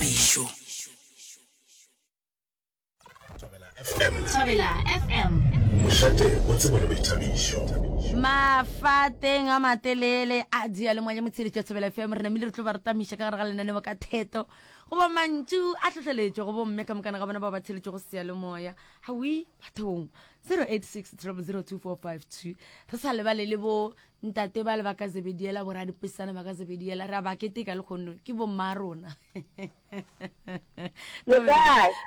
phišo. Thobela FM. Mošate o tsebo le boithabišo. mafateng a matelele a dialemoa ya motsheletso ya tshebela fm re namile re tlo ba re tamiša ka gare ga lenaneo ka theto goba mantšu a tlhotlheletšo go bomme ka mokana ga bona ba ba tsheletšo go sealemoya gawi bathong 086 re sa lebale le bo Ntate bale ba ka Zebediela, boradipesana ba ka Zebediela, ra ba keteka le kgonno, ke bomma rona. Re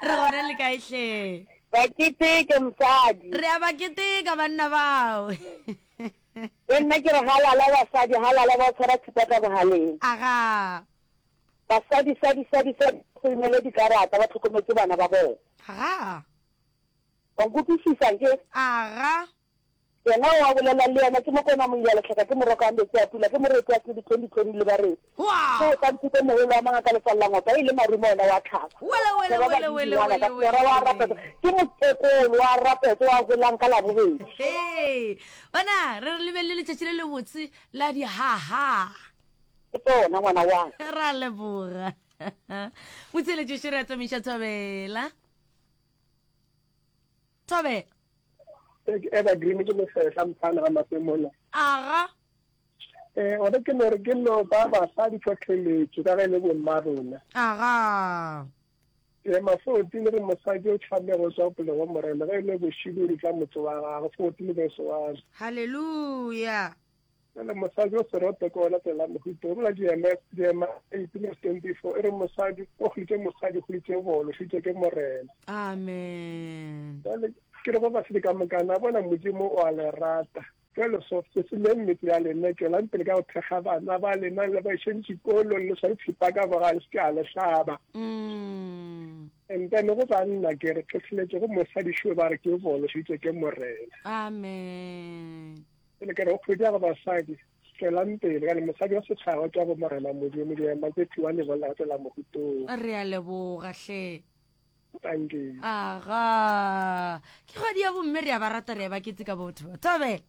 gona le ka ehle. Ba keteke mosadi. Re a ba keteka banna bao. Le nna ke re halala basadi, halala ba tshwara thipa ka bohaleng. Aga. Basadi, sadi, sadi, sadi, founele dikarata, ba tlhokometse bana ba bona. Aga. Ba nkutlwisisa nke? Aga. Yena o a bolela le yena, Ke mokone wa Moialehloka, ke moroka wa meetse a pula, ke moreti wa tlhodi, tlhodi, tlhodi, le bareti. Ke Otlantitemoholo wa mangaka le Fallangopa, e leng marumo wena wa tlhako. Ke roba dintšungwana ka sera wa rapetso, ke mokekolo wa rapetso wa holang ka Labobedi. Hee! Bona, re re le be le letšatši le lebotse la dihaha. Ke tsona, ngwana wa ka. Re a leboga. Motheeletši Sherry Atamisa Thobela. Tobe. E ke evergreen ke mosehla mphana ga mape mona. Aga. Eh ore ke no re ke no ba ba sa di tlhotlheletso ka ge le bo mma rona. Aga. Eh mafoti le re mosadi o tlhame go tswa pele go morena ge le bo shibiri tla motse wa gago foti le be se wa. Hallelujah. Bjale mosadi o seroto ke ona tsela mohuto o mna diema diema ipine stempi fo e re mosadi o hlitše mosadi hlitše bolo hlitše ke morena amen jale ke re ba ba sedi ka mokana bona modimo o a le rata jale so se se le mmetse ya lena tšwelang pele ka go thekga bana ba lena le ba išeng dikolo le sa itshipa ka boga le se a le hlaba mm. and then go banna ke re tlhotlheletse go mosadi šo ba re ke bolo hlitše ke morena amen Pele ke re go phodi ya go basadi, tswelang pele ka ne mosadi wa setšhaba ke wa bo Morena Modimo, ke ema ke thiwa lebolla go tswela mogutong. Re a leboga hle. Thank you. Aga. Ke kgwedi ya bomme re a ba rata re a ba keteka botho. Thobela.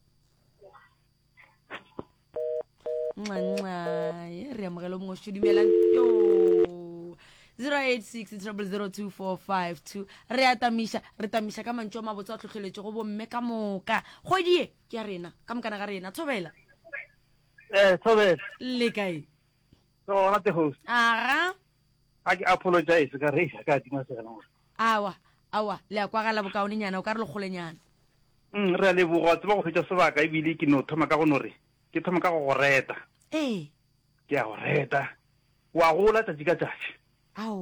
ncanca ye re amogelo mongwe sho dumelang yo 086 000245 re a tamiša re tamiša ka mantšu a mabotse a tlhotlheletšo go bomme ka moka kgwedie ke ya rena ka mokana ga rena thobela Eh, Thobela. le kae So, ona te host. aga A ke apologize ka re ka tima sena. awa awa le a kwagala bokaonenyana o ka re lekgolenyana Mm, re a leboga wa tseba go fetša sebaka ebile ke no thoma ka go no re ke thoma ka go go reta ee ke a go reta wa gola tšatši ka tšatši ao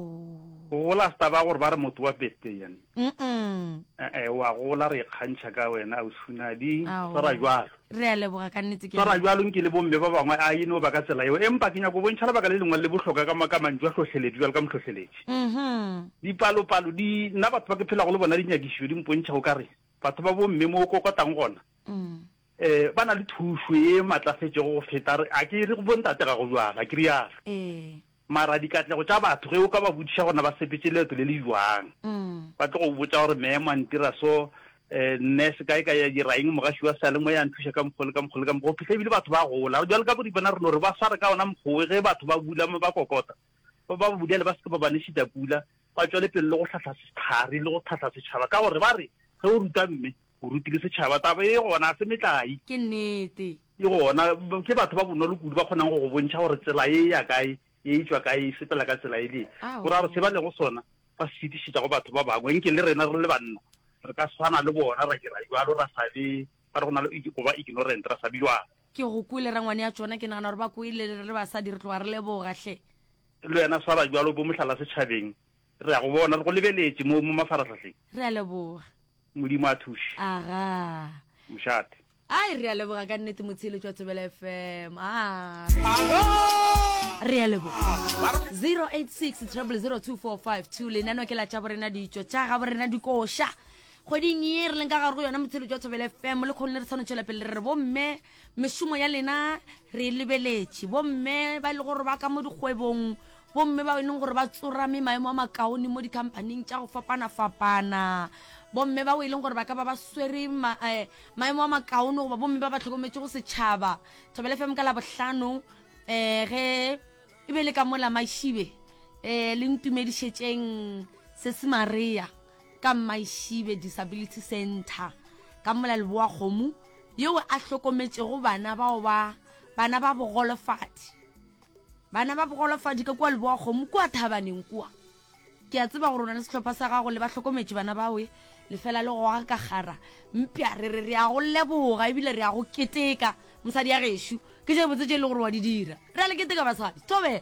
go gola se taba gore ba re motho wa birthday yane mm ee wa gola re ikgantšha ka wena ausunadi Ao. swara jalo re a leboga ka nnete ke swara jalo nke le bomme ba bangwe a e no ba ka tsela eo empa ke nyako bontšha lebaka le lengwe le bohloka ka maka mantšu a hlohleletši jalo ka mohlohleletši mhm dipalopalo di nna batho ba ke phelago le bona dinyakišišo di mpontšha o ka re batho ba bomme mo o kokotang gona mm Ee, ba na le thušo ye matlafetšego go feta, a ke re go bontate ga go bjalo, a ke rialo? Ee. Mara dikatlego tša batho, ge o ka ba botšiša gore na ba sepetše leeto le le bjang, ba tlo go botša gore memo a ntira so, nurse kae kae a dira eng, mogaši wa seyalemoya a nthuša ka mokgwa le ka mokgwa le ka mokgwa, go fihla ebile batho ba gola. Bjale ka Boripana re no re ba sware ka ona mokgwa wo, ge batho ba bula ba kokota, ba ba budele ba se ke ba ba nešita pula, ba tšwele pele le go hlahla sehlare le go hlahla setšhaba ka gore ba re ge o ruta mme, O rutile setšhaba. Taba e gona, ga se metlai. Ke nnete. E gona, ke batho ba bonolo kudu ba kgonang go go bontšha gore tsela e ya kae, e e tšwa kae, e sepela ka tsela e le ye. Gore a re se ba lego sona ba se fetišetša go batho ba bangwe, nke le rena re le banna re ka swana le bona, ra dira bjalo, ra sa be ba re go na le go ba ignorant, ra sa be bjalo. Ke go kwele rangwane ya tšona, ke nagana gore ba kwele, re le basadi re tloga re leboga hle. Le wena swara bjalo, bo mohlala setšhabeng. Re a go bona, re go lebeletše mo, mo mafarahlahleng. Re a leboga. Modimo a thuše. Aga. Mošate. Ai, re a leboga ka nnete, motheeletši wa Thobela FM. Aga. Re a leboga. 086 treble 02452 lenano ke la tša borena ditšo tša ga borena dikoša kgweding ye re leng ka gare go yona motheeletši wa Thobela FM le kgone le re tshwanetšwela pele re re bomme Mešomo ya lena re e lebeletše. Bomme ba e le gore ba ka mo dikgwebong, bomme bao e leng gore ba tsorame maemo a makaone mo dikhamphaning tša go fapana-fapana, bomme bao e leng gore ba ka ba ba swere ma, eh, maemo a makaone goba bomme ba ba tlhokometše go setšhaba. Thobela FM ka Labohlano eh, ge e be le ka mola Mašibe eh, le ntumedišetšeng Sesi Maria. ka Mmaishibe Disability Centre ka mola Leboakgomo yeo a hlokometšego bana bao ba bana ba bogolofadi bana ba bogolofadi ka kua Leboakgomo kua Thabaneng kua. Ke a tseba gore o na le sehlopha sa gago le ba hlokometše bana bawe lefela le goga ka kgara mpša re re re a go leboga ebile re a go keteka mosadi ya gešo ke tše botse tše e le gore wa di dira re a le keteka basadi thobela.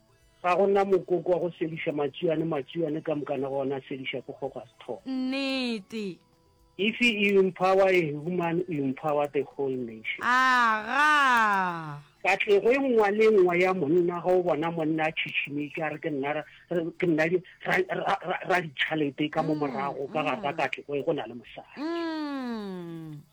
Ga go na mokoko wa go sediša matšiwane, matšiwane ka mokana go ona a sediša ke kgogo a se thogo. Nnete. If you empower a human, you empower the whole nation. Aga. Katlego e nngwa le e nngwa ya monna ga o bona monna a tšhitšhimetše a re ke nna ra- re- ke nna di- ra- ra- ra- ra- raditšhalete ka mo morago ka gare ga katlego e go na le mosadi. Mm.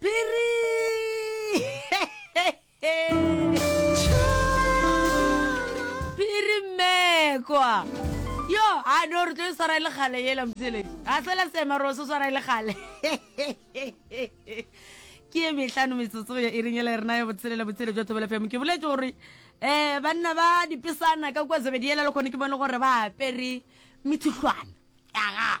Phiri! Phiri mmekwa! Yo, a no re tlo e swara e le gale yela motseledi. A fela sema ro se swara e le gale. Ke e mehlano metsotso ya iring e le rena ya botshelela botshele jwa thobela fm. Ke boletse gore eh banna ba dipesana ka kwa Zebediela le kgone ke bone gore ba apere mithuhlwana. Aga.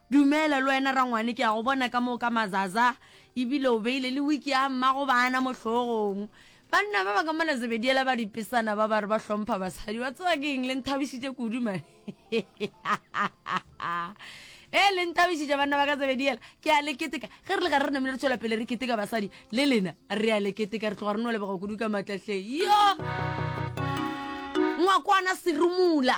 Dumela le wena rangwane, ke a go bona ka mo ka mazaza e bile o beile le wiki ya mmago bana mo hlogong. Banna ba ba ka mona Zebediela ba dipesana ba ba re ba hlompha basadi, wa tseba ke eng, le nthabišitše kudu man. Ee, le nthabišitše banna ba ka Zebediela, ke a le keteka. Ge re le gare re namile re tšwela pele re keteka basadi, le lena re a le keteka, re tloga re no lebega kudu ka matla hle. Yo! Ngwakwana Serumula!